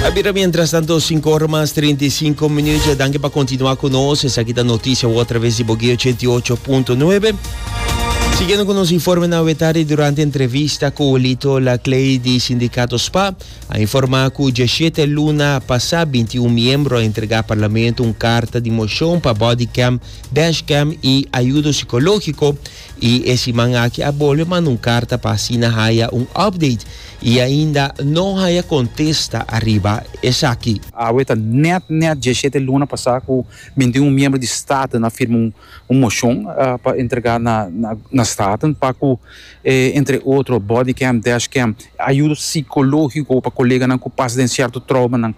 A bira mientras tanto, 5 ora mas 35 minutos. Danke pa continua cu nos. Esa aquí ta noticia a través de Boguí 88.9. Siguiendo con nos informe na wetari durante entrevista cu Lito Laclay di Sindicato SPA, a informa cu 17 luna pasa 21 miembro a entrega parlamento un carta di mocion pa bodycam, dashcam y ayudo psicologico I e siman aki a bolbe manda un karta pa asina haya un update i ainda no haya kontesta ariba esaki. Awe ta nèt nèt diesshete luna pasá ku mintin un miembro di Staten a firma un moshon pa entregá na Staten pa ku e entre otro body cam, dash cam, ayudo sikológiko pa koleganan ku pasa den sierto troumanan.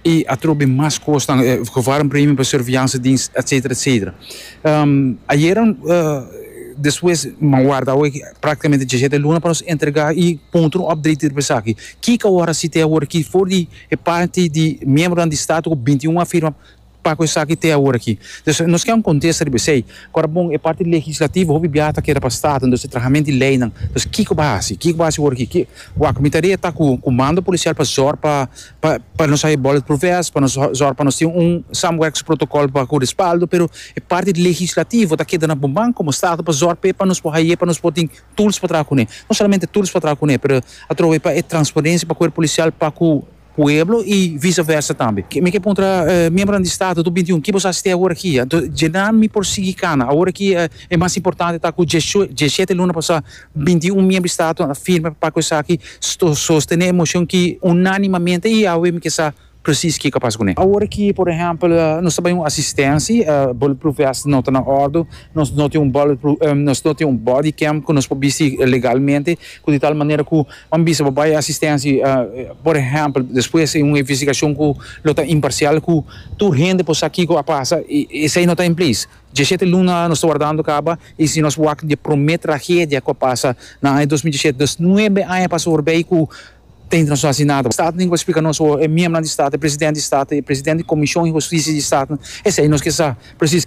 I atrò bin mas kosnan, e gevaar een premie per surveillanzedienst, et cetera, et cetera. Ayera despues m'a warda awor practicamente diesisiete luna pa nos entrega i puntra un update riba esaki. Kiko awor a haci te awor aki for di e parti di miembronan di Staat cu binti un a firma pa cu esaki te awor aki? Dus nos kier un contesta riba esey. Ora bon, e parti legislativo hopi bia ta keda pa Staat, entonces e trahament di leynan. Dus kiko b'a haci? Kiko b'a haci awor aki? Wak, mi ta reta cu comando policial pa zorg pa Pa pa nos haya bullet proof vest, pa nos zorg pa nos tin un samenwerkings protocol pa cu respaldo, pero e parti legislativo ta keda na bo man como Stato pa zorg p'e pa nos por haye pa nos por tin tools pa traha cune. No solamente tools pa traha cune, pero atrobe pa e transparencia pa cuerpo policial pa cu pueblo y vice versa tambe. Mi ke puntra miembronan di Stato tur binti un kibo sa hasi te awor aki? Anto dje nan mi por sigui cana. Awor aki e mas importante ta cu dje dje siete luna pasa Binti i un miembro di Staten a firma pa pacu esaki sostene e mocion ki unanimamente i awe mi ke sa presis kiko a pasa cu ne. Awor ki por ehempel nos ta bai un asistensi, bulletproof vest no ta na ordu, nos no tin un bulletproof, nos no tin un body cam cu nos por bisti legalmente, cu di tal manera cu bo a bisa bo bai asistensi por ehempel despues di un investigacion cu lo ta imparcial cu tur hende por sa kiko a pasa i esai no ta en place. Diesete luna nos ta wardando kaba i si nos wak di e promé tragedia ku a pasa na aña dos mil diesete, dus nuebe aña a pasa forbei ku teinta nos no hasi nada. Staten ku a splika nos e miembronan di Stat, e presidente di Stat, e presidente di Komishon di Hustisia di Staten, esei nos ke sa presis.